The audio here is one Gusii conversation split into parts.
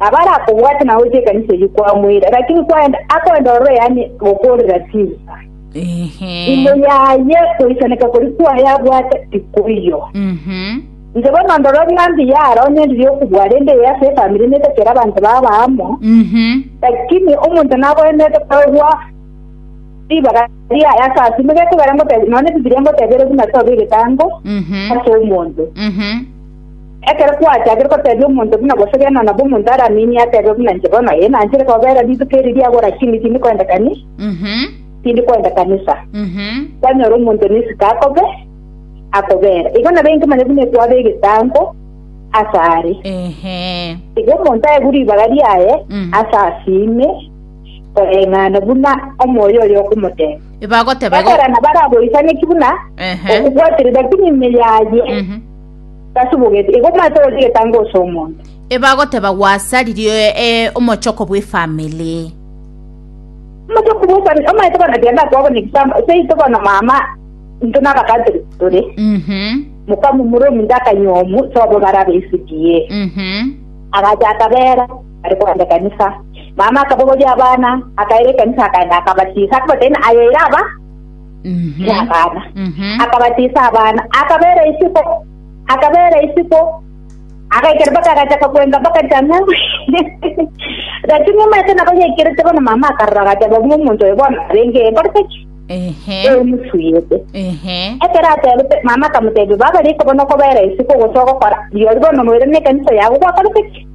Abarakobwate nagochia ekanisa eyio kwamoira, lakini kwaenda akoenda ororo yaani gokoorera chinsa. Ehe. Imo yaye goisaneka kori kwaye abwate tikoiyo. Mhm. Inche bono ndoro ng'a mbuya aro onye ndiri okobua rende eye ase efamiri netakera abanto baba amo, Mhm. lakini omonto nagoenerete korwa ribaga riaye ase asio, nigo ekogera ngotebia, nonya Bibilia ngotebia ere buna tobe egetango Mhm. ase omonto. Mhm. Ekero kwachakire kotebia omonto buna gose gena nabo omonto araminie atebe buna inche bono, ee, nanchire kobeera rituko eri riagwo lakini tindi koenda kani, tindi koenda kanisa. Kwanyora omonto nesiko akobe, akobeera. Igo nabo inke manya buna ekwaba egetango ase are. Ehe. Igo omonto aegwe ribaga riaye Mm. ase asiime koreng'ana buna omoyo oyo okomoteba. Ebagoteba igo. Ekorana baragoisane ki buna Ehe. okobwaterera kimi ime yaye Mhm. Tasubugeti, igo omanyete ogochia egetango ase omonto. Ebagoteba gwasa riria ee omochoko bw'efamily. Omochoko bw'efamily, omanyete bono genda kwabo ne example, seito bono mama into nabakatiri tore. Mhm. Mokamumura ominto akanywa omu, sobo barabe esidie. Mhm. Agacha akabera, ari kwenda ekanisa. Mama akabogoria abana, akaira ekanisa akaenda akabatiisa, akabatena ayeira aba. Mhm. n'abana Mhm. akabatisa abana akabera isiko akabera isiko agaikera mpaka agachaka kwenga mpaka chang'a lakini omanyete nabo yaikerete bono mama akarora agateba buna omonto oyo bono arenge ekorete ki Ehe. emusuyete Ehe. ekero atebete mama akamotebia baba riko bono okobera isiko ogocha ogokora yori bono noire na ekanisa yago gwakorete ki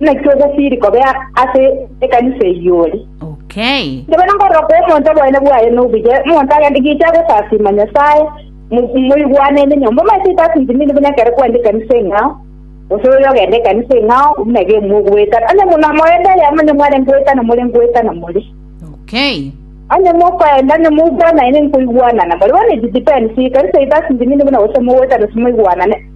Naki ogosiiri kobe ase ekanisa eyio ore. Okay. Ntobe na nkorora kwa omonto oboene bwaye nobuya, omonto agende gicha agosasima Nyasae, mo- moigwane ende nyomba. Omanyete itasinti nini buna ekero kwende ekanisa eng'ao, gose oyo ogende ekanisa eng'ao, buna iga imwe ogoetana. Onye buna moende eyemo onye mware ngoetana more ngoetana more. Okay. Onye mokoenda onye moigwanane nkoigwanana more. Bono it depends, ekanisa itasinti nini buna gose mogoetana ase moigwanane.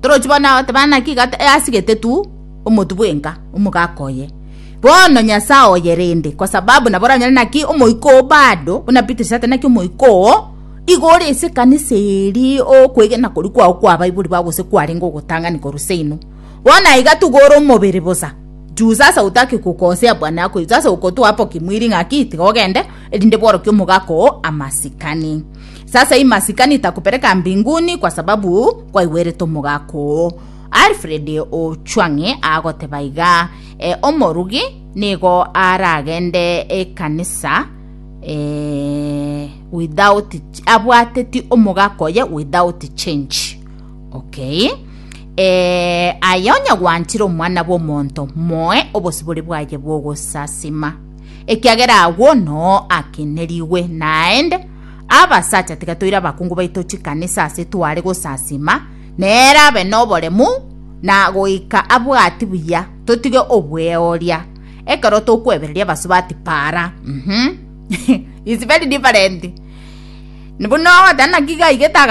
Torochi bono agoteba naki igata easigete tu omotu bwenka omogaka oye. Bono Nyasae oye rende kwa sababu nabo oranyore naki omoika oo bado buna Beatrice ate naki omoika oo igo ore ase ekanisa eria okwegena koria kwao kwa baibori bao gose kwarenge ogotang'ani korwa seino. Bono aiga tiga ore omobere bosa juu sasa otake gokosea bwana yako sasa okotoa hapo kimwiri ng'aki tiga ogende erinde bworokie omogaka oo amasikani. Sasa hii masikani itakupeleka mbinguni kwa sababu kwaigwerete omogaka oo. Alfred Ochwang'e agoteba iga, e, omorugi nigo aragende ekanisa e, without abwateti omogaka oye without change. Okay. E, aye onye gwanchire omwana bw'omonto moe obosibore bwaye bw'ogosasima ekiagera agwo noo akenerigwe naende Abasacha, tiga toire abakungu baito chikanisa ase tware gosasima, nere abe noboremu na goika abwati buya, totige obweoria. Ekero tokwebereria abasubati para. Mhm. It's very different. Buna ogotana naki gaiga etagati